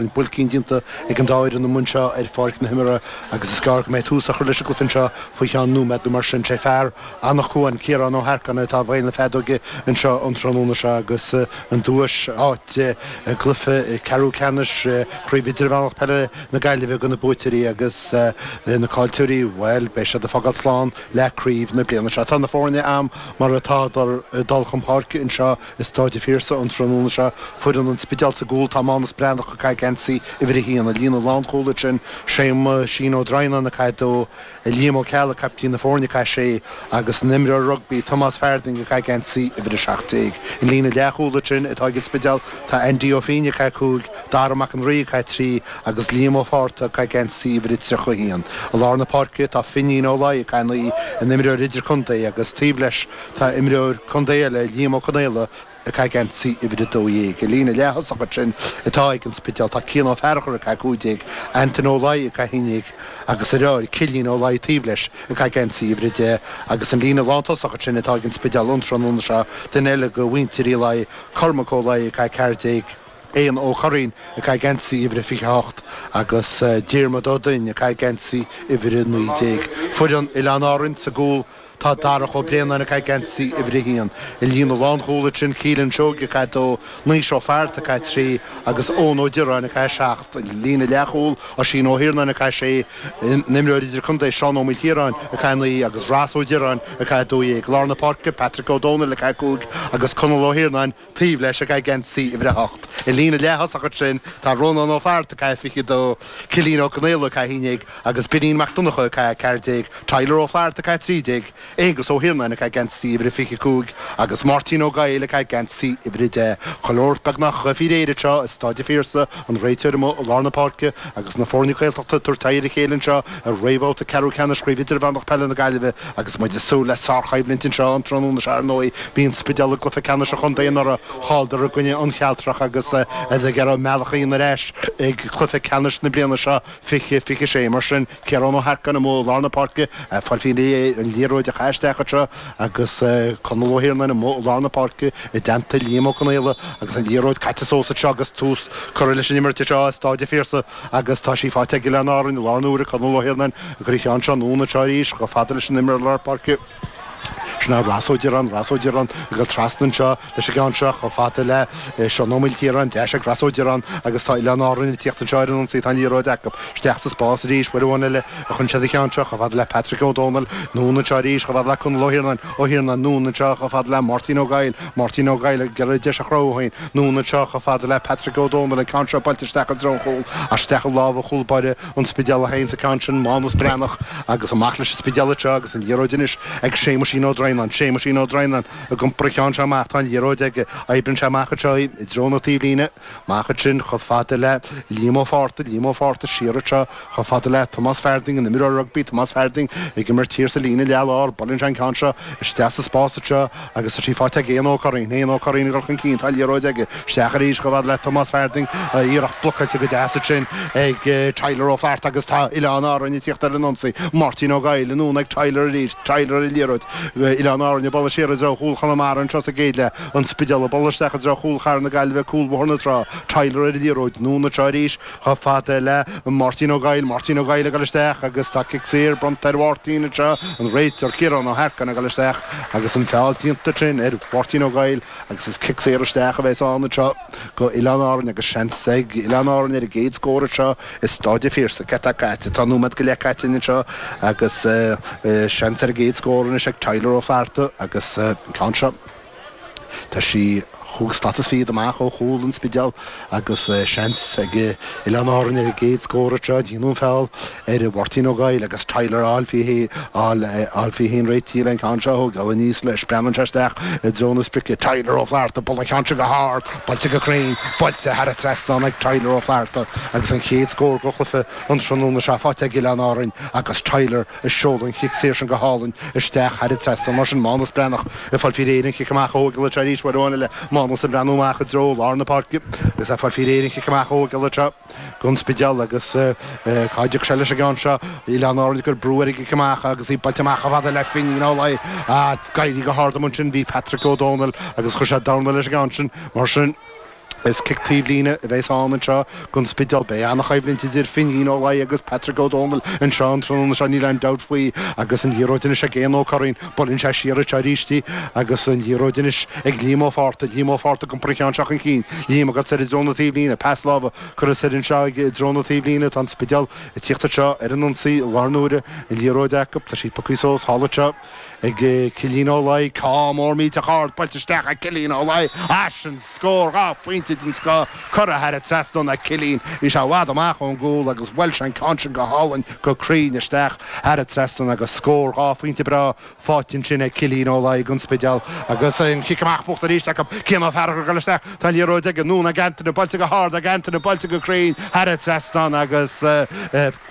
An buailcín déanta ag an dá fhoireann amuigh anseo ar pháirc na himeartha agus is gearr go mbeidh tús á chur leis an gcluiche anseo faoi cheann nóiméad nó mar sin. Sé fear Anach Cuain, Ciarán Ó hEarcáin, atá i bhfeighil na feadóige anseo an tráthnóna seo agus an duais, áit i gcluiche ceathrú ceannais Chraobh Idirmheánach Peile na Gaillimhe do na buaiteoirí agus na caillteoirí, bhuel, beidh siad ag fágáil slán le craobh na bliana seo. Tá na foirne agam mar atádar ag dul chun páirce anseo. i Stáid a' Phiarsaigh an tráthnóna seo foireann an Spidéil sa gcúl, tá Mánus Breathnach, ag caitheamh geansaí uimhir a haon, i líne lánchúil ansin, Séamuisín Ó Droighneáin, ag caitheamh a dó, Liam Ó Ceallaigh, caiptín na foirne, ag caitheamh a sé, agus an t-imreoir rugbaí, Tomás Farthing, ag caitheamh geansaí uimhir a seacht déag. I líne leathchúil ansin atá ag an Spidéal tá Andy Ó Fínne, ag caitheamh cúig, Dara Mac an Rí, ag caitheamh trí, agus Liam Ó Fátharta, ag caitheamh geansaí uimhir a tríocha a haon. I lár na páirce tá Finín Ó Laoi, ag caitheamh naoi, an t-imreoir idirchontae, agus taobh leis, Tá imreoir contae eile, Liam Ó Conaola, ag caitheamh geansaí uimhir 12. I líne leath-thosach ansin atá ag an Spidéal, tá Cian Ó Fearachair ag caitheamh 15, Antaine Ó Laoi ag caitheamh 11 agus a dheartháir, Cillian Ó Laoi taobh leis ag caitheamh geansaí uimhir 10 agus an líne lántosach ansin atá ag an Spidéal an tráthnóna seo, duine eile de mhuintir Uí Laoi, Cormac Ó Laoi ag caitheamh 14, Eoghan Ó Curraoin ag caitheamh geansaí uimhir 28 agus Diarmuid Ó Duinn ag caitheamh geansaí uimhir 19. Foireann Oileáin Árann sa gcúl Tá Darach Ó Bréanáin ag caitheamh geansaí uimhir a haon. I líne lánchúil ansin, Keelan Seoige ag caitheamh dó, Naoise Ó Fátharta ag caitheamh trí agus Eoin Ó Direáin ag caitheamh seacht. I líne leathchúil, Oisín Ó hIarnáin ag caitheamh sé, an imreoir idirchontae Seán Ó Maoilchiaráin ag caitheamh naoi agus Ros Ó Direáin ag caitheamh a dó dhéag. I lár na páirce, Patrick Ó Dónaill ag caitheamh cúig agus Conall Ó hIarnáin, taobh leis, ag caitheamh geansaí uimhir a hocht. I líne leath-thosach ansin tá Rónán Ó Fátharta, ag caitheamh 22, Cillín Ó Conaola, ag caitheamh 11, agus Birín Mac Donnchadha, ag caitheamh 14, Tyler Ó Flatharta, ag caitheamh 13, Aengus Ó hIarnáin, ag caitheamh geansaí uimhir a 25, agus Máirtín Ó Goill, ag caitheamh geansaí uimhir a deich. Chuile shórt beagnach faoi réir anseo, i Stáid a' Phiarsaigh, an réiteoir amuigh i lár na páirce, agus na foirne Gaeltachta ag tabhairt aghaidh ar a chéile anseo i réamhbhabhta ceathrú ceannais Chraobh Idirmheánach Peile na Gaillimhe. Agus muid ag súil le sárchoimhlint anseo an tráthnóna seo, ar ndóigh, bhí an Spidéal i gcluiche ceannais an chontae anuraidh, chailleadar i gcoinne An Chealtrach agus iad ag iarraidh a mbealach a dhéanamh ar ais ag cluiche ceannais na bliana seo, fiche, fiche sé. Mar sin, Ciarán Ó hEarcáin amuigh i lár na páirce, fáil faoi réir an liathróid a chaitheamh isteach anseo agus Conall Ó hIarnáin amuigh i lár na páirce i dteannta Liam Ó Conaola agus an liathróid caite suas anseo agus tús curtha leis an imirt anseo i Stáid a' Phiarsaigh. Agus tá sí faighte ag Oileáin Árann, láthair na huaire, Conall Ó hIarnáin, ag cur an cheann seo anonn anseo arís chomh fada leis an imreoir lár páirce. Sin é Ros Ó Direáin, Ros Ó Direáin ag dul trasna anseo leis an gceann seo chomh fada le Seán Ó Maoilchiaráin, ar ais ag Ros Ó Direáin agus tá Oileáin Árann ag tíocht anseo ar an ionsaí, tá an liathróid acu, isteach sa spás arís, uair amháin eile a chuireann siad an ceann seo chomh fada le Patrick Ó Domhnaill, anonn anseo arís chomh fada le Conall Ó hIarnáin, Ó hIarnáin, anonn anseo chomh fada le Máirtín Ó Goill, Máirtín Ó Goill, ag iarraidh deis a chruthú féin anonn anseo chomh fada le Patrick Ó Dónaill an ceann seo buailte isteach i dtreo an chúil, ach isteach i lámha chúl báire an Spidéil a théanns an ceann sin, Mánus Breathnach, agus amach leis an Spidéal anseo agus an liathróid anois ag Séamaisín Ó Droighneáin, Séamaisín Ó Droighneáin ag iompar an cheann seo amach, tá an liathróid aige, oibreann sé amach anseo í, i dtreo na taobhlíne, Amach ansin, chomh fada le Liam Ó Fátharta, Liam Ó Fátharta, siar anseo, chomh fada le Tomás Farthing, an imreoir rugbaí, Tomás Farthing ag imirt thiar sa líne leath lár, buaileann sé an ceann seo isteach sa spás anseo agus tá sí faighte ag Éanna Ó Curraoin, Éanna Ó Curraoin ag dul chun cinn, tá liathróid aige, isteach arís chomh fada le Tomás Farthing, iarracht blocáilte go deas ansin ag Tyler Ó Flatharta agus tá Oileáin Árainn ag tíocht ar an ionsaí, Máirtín Ó Goill, anonn ag Tyler arís, Tyler ar an liathróid, Oileáin Árainn ag bualadh siar i dtreo chúl Chonamara anseo sa gcéad leath. An Spidéal ag bualadh isteach i dtreo Chúl Chathair na Gaillimhe, Cúl Bhóthar na Trá, Tyler ar an liathróid, anonn anseo arís, chomh fada le Máirtín Ó Goill, Máirtín Ó Goill ag dul isteach agus tá cic saor bronnta ar Mháirtín anseo, an réiteoir Ciarán Ó hEarcáin ag dul isteach agus an feall déanta ansin ar Mháirtín Ó Goill agus is cic saor isteach a bheas ann anseo go Oileáin Árainn agus seans ag Oileáin Árainn ar an gcéad scór anseo i Stáid a' Phiarsaigh. Céard atá caite, tá nóiméad go leith caite againn anseo agus seans ar an gcéad scór anois ag Tyler Ó Flatharta agus an ceann seo. Tá sí chúig slata is fichead amach ó chúl an Spidéil agus seans ag Oileáin Árainn ar an gcéad scór anseo. Déanadh an feall ar Mháirtín Ó Goill agus Tyler ag fáil é féin réitithe leis an gceann seo a thógáil, aníos leis, breathnaíonn sé isteach i dtreo na sprice. Tyler Ó Flatharta, ag bualadh an cheann seo go hard, buailte go cruinn, buailte thar an trasnán ag Tyler Ó Flatharta agus an chéad scór go chluiche an tráthnóna seo faighte ag Oileáin Árainn agus Tyler a sheol an chic saor sin go hálainn isteach thar an trasnán. Mar sin, Mánus Breathnach ag fáil faoi réir an chic amach a thógáil anseo arís uair amháin eile. Mánus ag breathnú amach i dtreo lár na páirce agus ag fáil faoi réir an chic amach a thógáil anseo gon Spidéal agus cá dtiocfaidh sé leis an gceann seo? Oileáin Árainn ag cur brú ar an gcic amach agus í buailte amach chomh fada le Finín Ó Laoi ach ag éirí go hard ann ansin bhí Patrick Ó Dónaill agus chuir sé dorna leis an gceann sin. Mar sin. Is cic taobhlíne a bheas ann anseo don Spidéal. Beidh an-choimhlint idir Finín Ó Laoi agus Patrick Ó Dónaill anseo an tráthnóna seo, níl aon dabht faoi. Agus an liathróid anois ag Éanna Ó Curraoin. Buaileann sé siar anseo arís í agus an liathróid anois ag Liam Ó Fátharta. Liam Ó Fátharta ag iompar an cheann seo chun cinn. Liam agat soir i dtreo na taobhlíne. Pas láimhe curtha soir anseo i dtreo na taobhlíne. Tá an Spidéal ag tíocht anseo ar an ionsaí an darna huair. An liathróid acu. Tá sí pioctha suas thall anseo. ag Cillín Ó Laoi, ceann mór millteach ard buailte isteach ag Cillín Ó Laoi, á, sin scór, dhá phointe den scoth, curtha thar an trasnán ag Cillín, bhí sé i bhfad amach ón gcúl agus bhuail sé an ceann sin go hálainn go cruinn isteach, thar an trasnán agus scór, dhá phointe breá faighte ansin ag Cillín Ó Laoi gon Spidéal agus an chic amach buachta arís acu, Cian Ó Fearchair ag dul isteach, tá an liathróid aige, anonn ag Antaine, buailte go hard ag Antaine, buailte go cruinn, thar an trasnán agus.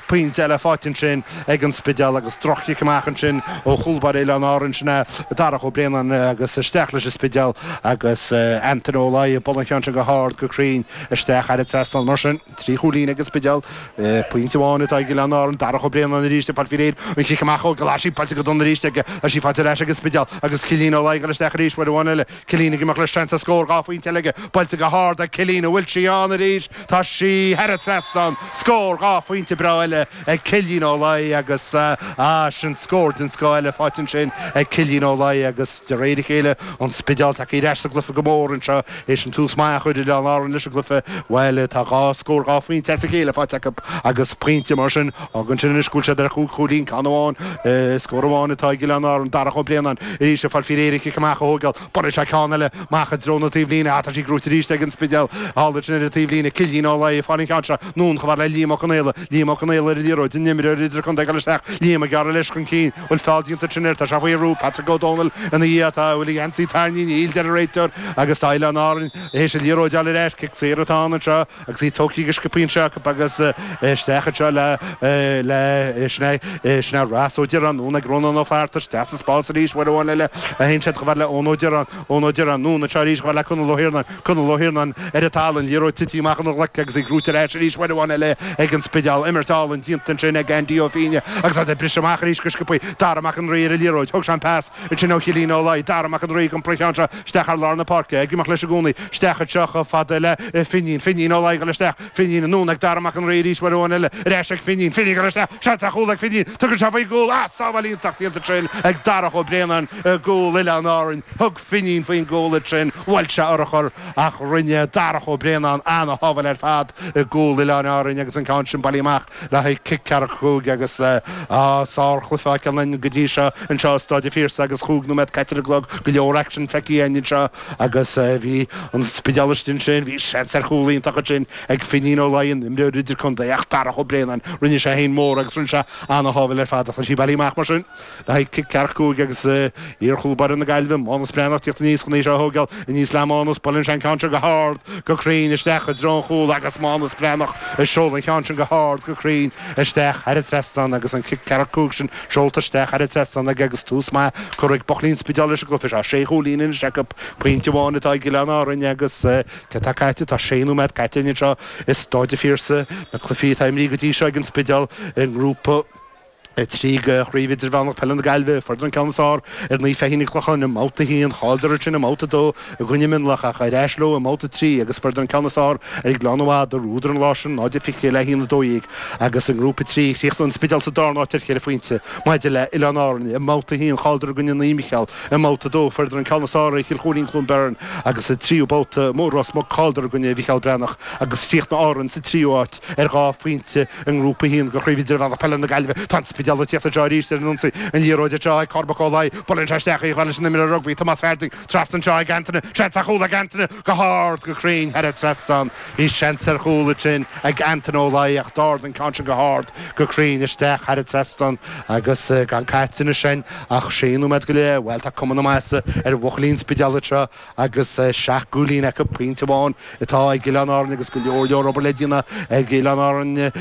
Pointe eile faighte ansin ag an Spidéal agus droch-chic amach ansin ó chúl báire Oileáin Árann, sin é Darach Ó Braonáin agus isteach leis an Spidéal agus Antaine Ó Laoi ag bualadh an cheann sin go hard, go cruinn isteach thar an trasnán. Mar sin, trí chúilín ag an Spidéal, pointe amháin atá ag Oileáin Árann. Darach Ó Braonáin arís ag fáil faoi réir an chic amach a thógáil is í buailte go dona arís aige is í faighte ar ais ag an Spidéal agus Cillín Ó Laoi ag dul isteach arís uair amháin eile. Cillín ag imeacht leis, seans ar scór dhá phointe eile aige, buailte go hard ag Cillín, an bhfuil sí ann arís? Tá sí thar an trasnán, scór dhá phointe breá eile ag Cillín Ó Laoi agus, ah, sin scór den scoth eile faighte ansin ag Cillín Ó Laoi agus de réir a chéile an Spidéal tagtha ar ais sa gcluiche go mór anseo théis an tús maith a chuir Oileáin Árann leis an gcluiche, bhuel tá dhá scór dhá phointe as a chéile faighte acu agus pointe mar sin Fágann sin anois go bhfuil siad ar chúig chúilín, ceann amháin, scór amháin atá ag Oileáin Árann, Darach Ó Braonáin arís ag fáil faoi réir an chic amach a thógáil. Buaileann sé ceann eile amach i dtreo na taobhlíne. Ach tá sí gnóite arís ag an Spidéal thall ansin ar an taobhlíne. Cillín Ó Laoi ag seoladh an cheann seo anonn chomh fada le Liam Ó Conghaile. Liam Ó Conghaile ar an liathróid, an imreoir idirchontae ag dul isteach, Liam ag gearradh leis chun cinn. Bhfuil feall déanta ansin air, tá sé faoi bhrú, Patrick Ó Dónaill ina dhiaidh, tá an bhfuil geansaí tarraingthe, níl a deir an réiteoir agus tá Oileáin Árann théis an liathróid a fháil ar ais. Cic saor atá ann anseo. agus í tógthaí go sciobtha anseo acu agus isteach anseo le le sna sna rás Ó Direáin, anonn ag Rónán Ó Fátharta, isteach sa spás arís uair amháin eile a théann siad, chomh fada le Eoin Ó Direáin, Eoin Ó Direáin, anonn anseo arís chomh fada le Conall Ó hIarnáin, Conall Ó hIarnáin, ar an talamh, liathróid tite amach óna ghlaic agus í gnóite ar ais arís uair amháin eile ag an Spidéal, imirt álainn déanta ansin ag Andy Ó Fínne agus iad ag briseadh amach arís go sciobtha, Dara Mac an Rí ar an liathróid, thóg sé an pas. Ansin ó Chillín Ó Laoi, Dara Mac an Rí, ag iompar an cheann seo isteach thar lár na páirce, ag imeacht leis i gcónaí, isteach anseo chomh fada le Finín, Finín Ó Laoi ag dul isteach, Finín, anonn ag Dara Mac an Rí arís, uair amháin eile, ar ais ag Finín, Finín ag dul isteach, seans ar chúl ag Finín, tugann sé faoin gcúl, ah, sábháil iontach déanta ansin ag Darach Ó Braonáin i gcúl Oileáin Árainn, thug Finín faoin gcúl ansin, bhuail sé urchar ach rinne Darach Ó Braonáin an-shábháil ar fad i gcúl Oileáin Árainn agus an ceann sin bailithe amach. Le haghaidh cic ceathracha cúig agus sár-chluiche á fheiceáil a'inn go dtí seo anseo i Stáid a' Phiarsaigh agus chúig nóiméad caite ar an gclog, go leor action feicthe a'inn anseo agus bhí an Spidéal istigh ansin, bhí seans ar chúl iontach ansin ag Finín Ó Laoi, an imreoir idir-contae ach Darach Ó Braonáin, rinne sé fhéin mór agus rinne sé an-sábháil ar fad ach tá sí bailithe amach mar sin. Le haghaidh cic ceathracha cúig agus iar-chúl baire na Gaillimhe, Mánus Breathnach, teacht aníos chun é seo a thóigeáil aníos le Mánus, buaileann sé an ceann seo go h-ard, go cruinn, isteach i dtreo an chúl agus Mánus Breathnach ag seoladh an cheann sin go h-ard, go cruinn, isteach thar an trasnán agus an cic ceathracha cúig sin seolta isteach thar an trasnán aige agus tús maith curtha ag buachaillí an Spidéil leis an gcluiche seo. Sé chúilín anois acu, pointe amháin atá ag Oileáin Árann agus céard atá caite, tá sé nóiméad caite anseo i Stáid an Phiarsaigh, na cluichí atá imrithe go dtí seo ag an Spidéal i ngrúpa, 3 de Chraobh Idirmheánach Peile na Gaillimhe, fuaireadar an ceann is fearr ar Naomh Feichín an Chlocháin i mbabhta 1, chailleadar ansin i mbabhta 2 i gcoinne Mionlach ach ar ais leo i mbabhta 3 agus fuaireadar an ceann is fearr ar Ghleann na Madadh, bhuadar an lá sin, 0 21 le 1 12 agus i nGrúpa 3, chríochnaigh an Spidéal sa darna háit ar cheithre phointe maidir le Oileáin Árann i mbabhta 1, chailleadar i gcoinne Naomh Micheál i mbabhta 2, Ford an ceann is fearr ar Chill Chuairín-Cluain Bheirn agus sa tríú babhta amuigh i Ros Muc, chailleadar i gcoinne Mhicheál Breathnach agus chríochnaigh Árainn sa tríú háit. ar dhá phointe i nGrúpa 1 de Chraobh Idirmheánach Peile na Gaillimhe. Tá an Spidéal ag tíocht anseo arís ar an ionsaí. An liathróid anseo ag Cormac Ó Laoi. Buaileann sé isteach í a ghabh leis an imreoir rugbaí, Tomás Farthing. Trasna anseo ag Antaine. Seans ar chúl ag Antaine. Go hard, go cruinn, thar an trasnán. Bhí seans ar chúl ansin ag Antaine Ó Laoi ach d'ardaigh an ceann sin go hard, go cruinn, isteach thar an trasnán agus gan caite anois ann ach sé nóiméad go leith. Bhuel, tá cuma na maitheasa ar bhuachaillí an Spidéil anseo. agus seacht gcúilín acu, pointe amháin atá ag Oileáin Árann agus go leor leor obair le déanamh ag Oileáin Árann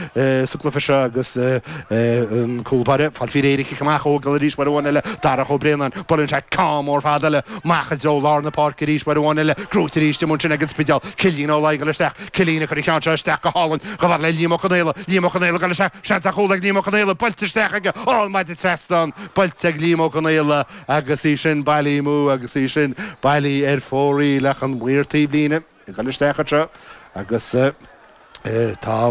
sa gcluiche seo agus an cúl báire ag fáil faoi réir an cic amach a thógáil arís, uair amháin eile, Darach Ó Braonáin, buaileann sé ceann mór fada eile amach i dtreo lár na páirce arís, uair amháin eile, gnóite arís amuigh ansin ag an Spidéal, Cillian Ó Laoi ag gabháil isteach, Cillian ag cur an cheann seo isteach go hálainn, go bharr le Liam Ó Conghaile, Liam Ó Conghaile ag dul isteach, seans ar chúl ag Liam Ó Conghaile, buailte isteach aige, ó an maide trasna buailte ag Liam Ó Conghaile, Agus í sin bailithe amú agus í sin bailithe ar fóraoil ach an maor taobhlíne ag dul isteach anseo agus tá